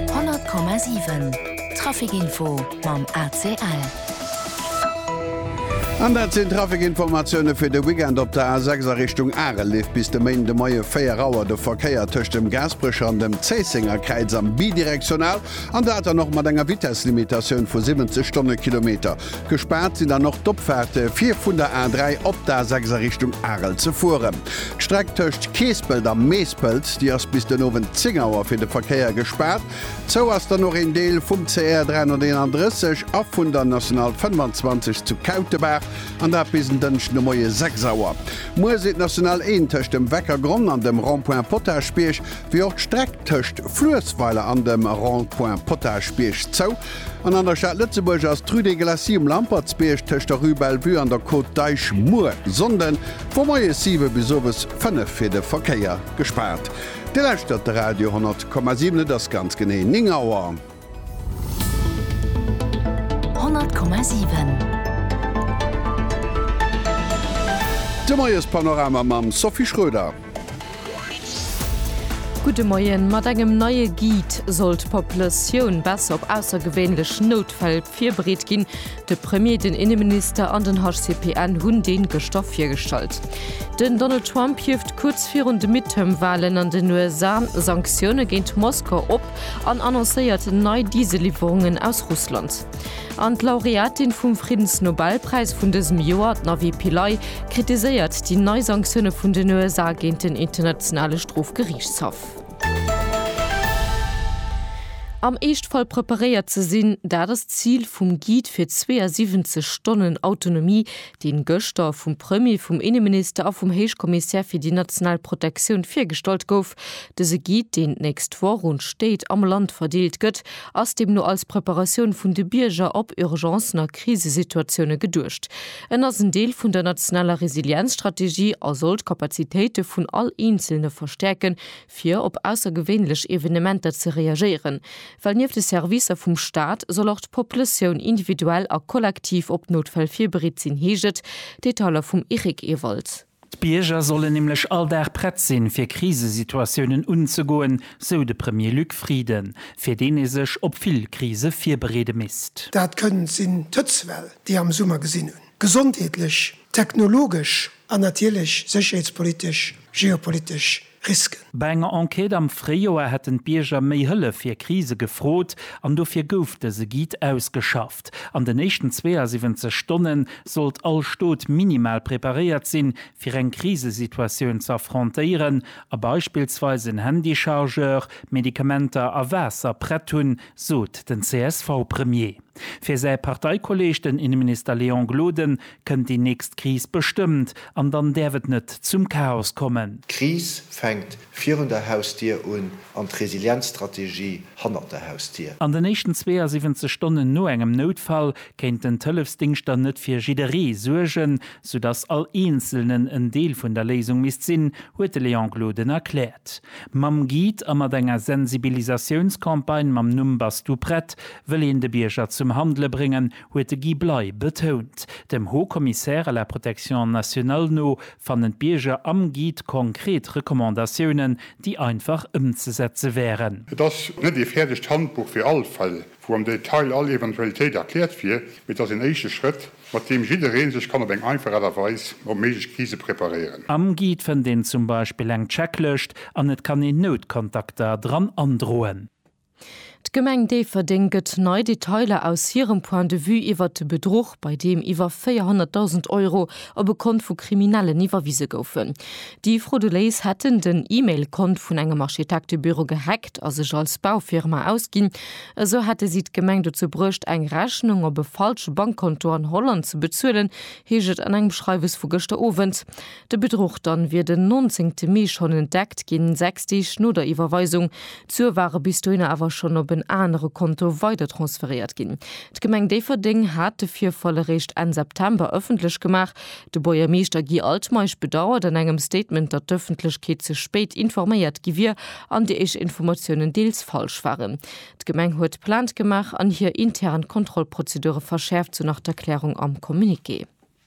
100,7 Trafikinfo mam ACL. An dat sinn d'Trafikinformatioune fir de Weekend op der A6 a Richtung Arel. Leeft bis de Méinde Moie 4 Auer de Verkéier tëscht dem Gaasperecher an dem Zéisséngerkräiz am bidirektional, an dat dann och mat enger Vitesslimitatioun vu 70 Stonnekilometer. Gespaart sinn dann och d'Opfaarte fir vun der A3 op d'A6 a Richtung Arel ze fueren. D'Streck tëscht Keespelt a Meespelt, déi ass bis den Owend 10 Auer fir de Verkéier gespaart. Zou ass dann och een Deel vum CR 331 a vun der National 25 zu Kautebaach, an dat bis en Dënschden de Moie 6 Auer. Muer sinn d'National 1 tëscht dem Weckergronn an dem Rond-point Potagebierg, wéi och d'Streck tëscht Fluessweiler an dem Rond-point Potagebierg zou. An an der Stad Lëtzebuerg ass d'Rue des Glacis um Lampertsbierg tëscht der Rue Bellevue an der Côte d'Eich muer Sonnden vu moies 7 bis owes 5 fir de Verkéier gespaart. Dir lauschtert de Radio 10,7, et ass ganz genee 9 Auer. 10,7. De Moiespanorama mam Sophie Schroeder. Gudde Moien, Mat engem neie Guide soll d'Populatioun besser op aussergewéinlech Noutfäll virbereet ginn. De Premier, den Inneminister an den HCPN hunn dee gëschter virgestallt. Den Donald Trump hieft kuerz virun de Midterm-Walen an den USA Sanktioune géint Moskau op an annoncéiert nei Dieselliwwerungen aus Russland. An d'Laureatin vum Friddensnobelpräis vun dësem Joer, d'Navi Pillay, kritiséiert déi nei Sanktioune vun den USA géint den Internationale Strofgeriichtshaff. Am Eeschtfall preparéiert ze sinn, dat ass d'Zil vum Guide fir 72 Stonnen Autonomie deen gëschter vum Premier, vum Inneminister a vum Héichkommissär fir déi national Protektioun virgestallt gouf. Dëse Guide, deen d'nächst Woch un d'Stéit am Land verdeelt gëtt, ass deemno als Preparatioun vun de Bierger op Urgencen a Krisesituatiounen geduecht. En ass en Deel vun der nationaler Resilienzstrategie a soll d'Kapazitéite vun all Eenzelne verstäerken, fir op aussergewéinlech Evenementer ze reagéieren, well nieft de Servicer vum Staat soll och d'Populatioun individuell a kollektiv op Noutfäll virbereet sinn, heescht et. Detailer vum Eric Ewald. D'Bierger sollen nämlech all Dag prett sinn, fir Krisesituatiounen unzegoen, sou de Premier Luc Frieden, fir deen ee sech op vill Krise virbereede misst. Dat kënnt sinn d'Hëtzwell, déi ee am Summer gesinn hunn, gesondheetlech, technologesch an natierlech sécherheetspolitesch, geopolitesch Risken. Bei enger Enquête am Fréijoer hätten d'Bierger méi Hëllef fir Krise gefrot an dofir gouf dëse Guide ausgeschafft. An den éischten 72 Stonne sollt all Stot minimal preparéiert sinn, fir eng Krisesituatioun ze affrontéieren a beispillsweis en Handychargeur, Medikamenter a Waasser prett hunn, sot den CSV-Premier. Fir säi Parteikolleeg, den Inneminister Léon Gloden, kënnt déi nächst Kris bestëmmt an dann däerf et net zum Chaos kommen. D'Kris fänkt virun der Hausdier un an d'Resilienzstrategie hannert der Hausdier. An den éischten 72 Stonnen no engem Noutfall kéinten d'Hëllefsdingschter net fir jidderee suergen, soudass all Eenzelnen en Deel vun der Léisung misst sinn, huet de Léon Gloden erkläert. Mam Guide a mat enger Sensibilisatiounscampagne mam Numm Bass du prett? wëll een de Bierger zum Handele bréngen, huet de Guy Bley betount. Dem Haut Commissaire à la protection nationale no fannen d'Bierger am Guide konkret Recommandatiounen, déi einfach ëmzesetze wären. Et ass net ee fäerdegt Handbuch fir all Fall, wou am Detail all Eventualitéit erkläert wier, mee et ass een éischte Schrëtt, mat deem jidderee sech kann op eng einfach Aart a Weis op méiglech Krise preparéieren. Am Guide fënnt een zum Beispill eng Checklëscht an et kann een Noutkontakter dran androen. D'Gemeng Déifferdeng gëtt nei Detailer aus hirem Point de vue iwwert de Bedruch, bei deem iwwer 400.000 Euro op e Kont vu Kriminellen iwwerwise goufen. Déi Frauduléis hätten den E-Mail-Kont vun engem Architektebüro gehackt a sech als Baufirma ausginn. Esou hätte si d'Gemeng dozou bruecht, eng Rechnung op e falsche Bankkonto an Holland ze bezuelen, heescht et an engem Schreiwes vu gëschter Owend. De Bedruch dann wier den 19 te Mee schonn entdeckt ginn, sechs Deeg no der Iwwerweisung. D'Sue ware bis dohinner awer schonn op en anere Konto weidertransferéiert ginn. D'Gemeng Déifferdeng hat de Virfall eréischt Enn September ëffentlech gemaach. De Buergermeeschter Guy Altmeisch bedauert an engem Statement, datt d'Ëffentlechkeet ze spéit informéiert gi wier an déi éischt Informatiounen deels falsch waren. D'Gemeng huet Plainte gemaach an hir intern Kontrollprozedure verschäerft, sou nach d'Erklärung am Communiqué.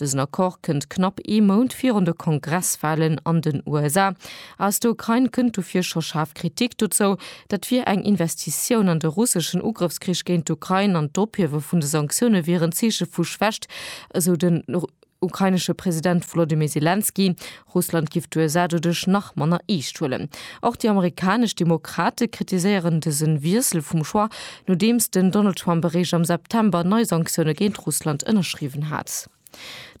Dësen Accord kënnt knapp ee Mount virun de Kongresswalen an den USA. Aus der Ukrain kënnt dofir scho schaarf Kritik dozou. Dat wier eng Investitioun an de russeschen Ugrëffskrich géint d'Ukrain an d'Ophiewe vun de Sanktioune wieren Zeeche vu Schwächt, esou den ukrainesche President Wolodymyr Selenskyj. Russland giff d'USA doduerch nach manner eescht huelen. Och déi amerikanesch Demokrate kritiséieren dëse Wiessel vum Choix, nodeems den Donald Trump eréischt am September nei Sanktioune géint Russland ënnerschriwwen hat.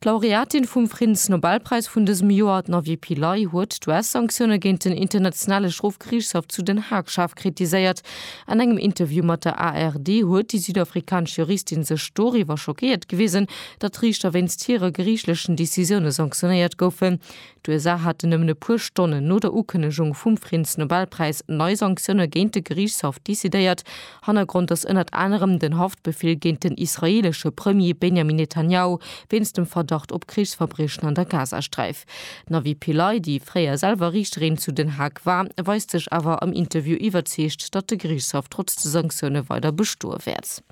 D'Laureatin vum Friddensnobelpräis vun dësem Joer, d'Navie Pillay, huet d'US-Sanktioune géint den Internationale Strofgeriichtshaff zu Den Haag schaarf kritiséiert. An engem Interview mat der ARD huet déi südafrikanesch Juristin sech doriwwer schockéiert gewisen, datt Riichter wéinst hire geriichtlechen Decisioune sanktionéiert goufen. D'USA haten nëmmen e puer Stonnen no der Ukënnegung vum Friddensnobelpräis nei Sanktioune géint de Geriichtshaff decidéiert. Hannergrond ass ënnert anerem den Haftbefeel géint den israeelesche Premier Benjamin Netanjahu wéinst dem Verdacht op Krichsverbriechen an der Gazasträif. D'Navi Pillay, déi fréier selwer Riichterin zu Den Haag war, weist sech awer am Interview iwwerzeegt, datt de Geriichtshaff trotz de Sanktioune weider bestoe wäert.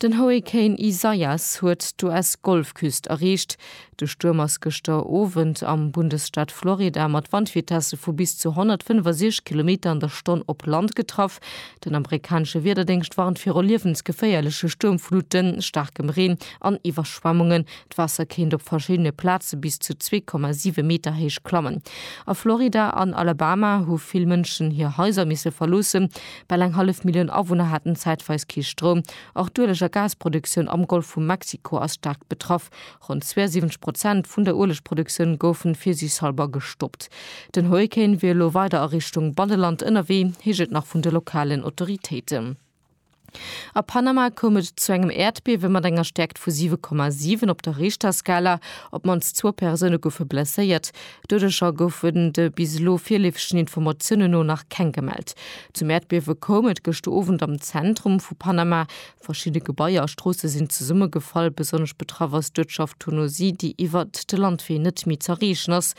Den Hurrikan Isaias huet d'US-Golfküst erreecht. De Stuerm ass gëschter Owend am Bundesstaat Florida mat Wandvitesse vu bis zu 165 Kilometer an der Stonn op Land getraff. Den amerikanesche Wiederdéngscht warnt viru liewensgeféierleche Stuermfluten, staarkem Reen an Iwwerschwemmungen. D'Waasser kéint op verschiddene Plaze bis zu 2,7 Meter héich klammen. A Florida an Alabama hu vill Mënschen hir Haiser misse verloossen. Bal eng hallef Millioun Awunner haten zäitweis kee Stroum. Och d'Ueleg a Gasproduktioun am Golf vu Mexiko ass staark betraff. Ronn 72 Prozent vun der Uelegproduktioun goufen fir sech selwer gestoppt. Den Hurrikan wier elo weider a Richtung Banneland ënnerwee, heescht et nach vun de lokalen Autoritéiten. A Panama koum et zu engem Äerdbiewe mat enger Stäerkt vu 7,7 op der Richterskala. Op d'mannst zwou Persoune goufe blesséiert. Doudescher goufen de bis elo virleefegen Informatiounen no nach keng gemellt. Zum Äerdbiewe koum et gëschter Owend am Zentrum vu Panama. Verschidde Gebaier a Stroosse sinn zesummegefall. Besonnesch betraff ass d'Uertschaft Tonosí, déi iwwer de Landwee net méi z'erreechen ass.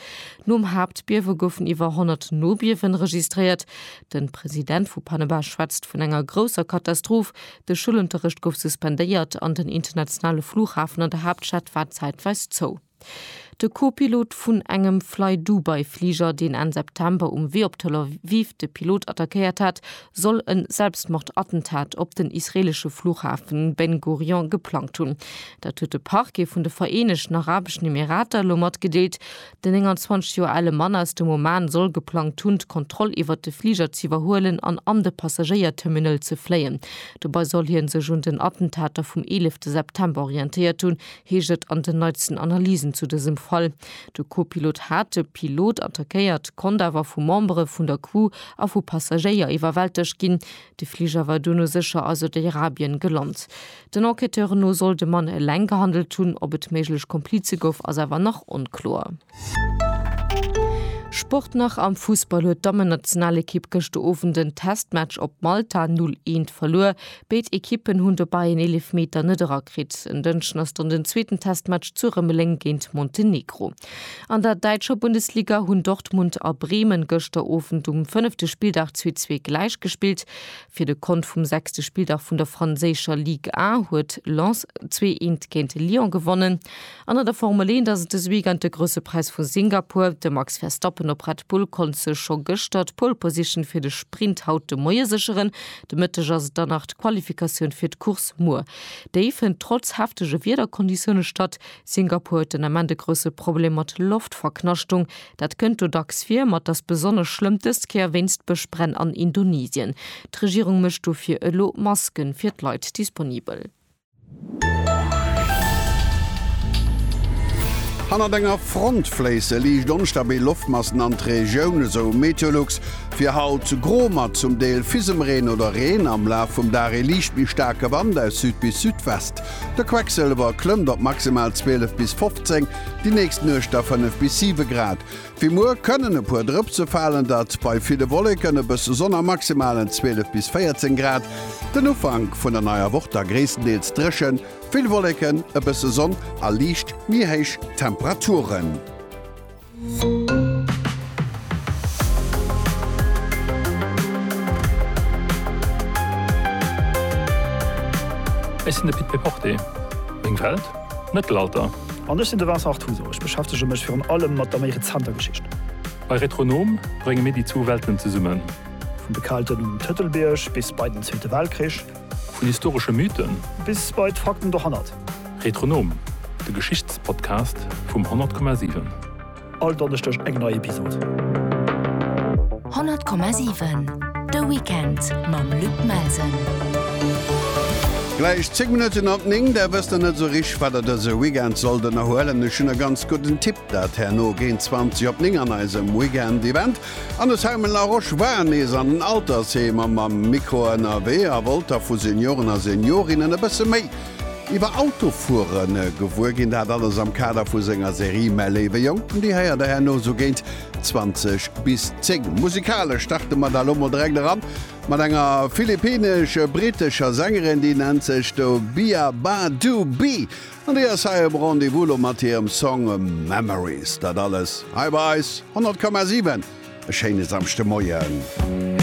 Nom Haaptbiewe goufen iwwer 100 Nobiewen registréiert. De President vu Panama schwätzt vun enger grousser Katastroph. De Schoulunterrecht gouf suspendéiert an den internationale Flughafen an der Haaptstad war zäitweis zou. De Co-Pilot vun engem Flydubai-Fliger, deen Enn September um Wee op Tel Aviv de Pilot attackéiert hat, soll e Selbstmordattentat op den israeelesche Fluchhafen Ben Gurion geplangt hunn. Dat huet de Parquet vun de Vereenegten Arabeschen Emirater elo matgedeelt. Den 29 Joer ale Mann aus dem Oman soll geplangt hunn, d'Kontroll iwwert de Fliger ze iwwerhuelen an an de Passagéierterminal ze fléien. Dobei soll hie sech un den Attentater vum 11 September orientéiert hunn, heescht et an den neitsten Analysen zu dësem Fall. De Co-Pilot hat de Pilot attackéiert, konnt awer vu Membere vun der Crew a vu Passagéier iwwerwältegt ginn. De Fliger war duerno sécher a Saudiarabien gelant. Den Enquêteuren no soll de Mann eleng gehandelt hunn. Ob et méiglech Komplize gouf, ass awer nach onkloer. Sport nach, Am Fussball huet d'Dammennationalekipp gëschter Owend den Testmatch op Malta 0, 1 verluer. Béid Ekippen hunn dobäi en Eelefmeter net erakritt. En Dënschden ass dann den zweeten Testmatch zu Rëmeleng géint Montenegro. An der däitscher Bundesliga hunn Dortmund a Bremen gëschter Owend um fënnefte Spilldag zwee zwee gläich gespillt. Fir de Kont vum sechste Spilldag vun der franséischer Ligue 1 huet Lens zwee eent géint Lyon gewonnen. An an der Formel 1 ass et dëse Weekend de Grousse Präis vu Singapur. De Max Verstappen op Red Bull konnt sech scho gëschter d'Pole Position fir de Sprint haut de Moie sécheren. De Mëtteg ass et dann nach d'Qualifikatioun fir d'Course muer. Déi fënnt trotz heftege Wiederkonditioune statt. Singapur huet den Ament e grousse Problem mat Loftverknaschtung. Dat kënnt do dacks vir, ma 't ass besonnesch schlëmm dës Kéier wéinst Bëschbränn an Indonesien. D'Regierung mécht dofir elo Masken fir d'Leit disponibel. Hannert enger Front fléisse liicht onstabil Loftmassen an d'Regioun, esou Meteolux. Fir haut gro mat zum Deel Fisemreen oder Reen, am Laf vum Dag ee liicht méi staarke Wand aus Süd bis Südwest. De Quecksëlwer klëmmt op maximal 12 bis 15, déi nächst Nuecht da 5 bis 7 Grad. Wéi muer kënnen e puer Drëpse falen, dat bei ville Wolleken, e bësse Sonn a maximalen 12 bis 14 Grad. Den Ufank vun der neier Woch da gréisstendeels dréchen, vill Wolleken, e bësse Sonn a liicht méi héich Temperaturen. Ech sinn de Pit Péporté, meng Welt? Mëttelalter. An ech sinn de Vincent Artuso, ech beschäftege mech virun allem mat der méi rezenter Geschicht. Bei Retronom brénge mir déi zwou Welten zesummen. Vun de Kelten um Tëtelbierg bis bei den Zweete Weltkrich. Vun historesche Mythen. Bis bei d'Fakten dohannert. Retronom, de Geschichtspodcast vum 100,7. All Donneschdeg eng nei Episod. 100,7 De Weekend mam Luc Melsen. Gläich 10 Minutten op 9, der wësst der net sou rich wat der dëse Weekend sollt ënnerhuelen. Ech hunn e ganz gudden Tipp, dat herno géint 20 op 9 an eisem Weekend Event. An de Simon Laroche war nees an den Altersheemer mam Mikro ënnerwee a wollt da vu Senioren a Seniorinnen e bësse méi Iwwer Autofueren gewuer ginn, dat alles am Kader vu senger Serie Mäi léiwe Jonken. Déi héiert der herno sou géint 20 bis 10. Musikalesch starte mer da lo mol direkt eran mat enger philippinesch-britescher Sängerin, déi nennt sech Dobia Badu Bi an déi ass hei um Rendez-vous lo mat hirem Song Memories. Dat alles hei bei eis 100,7. E schéine Samschdemoien.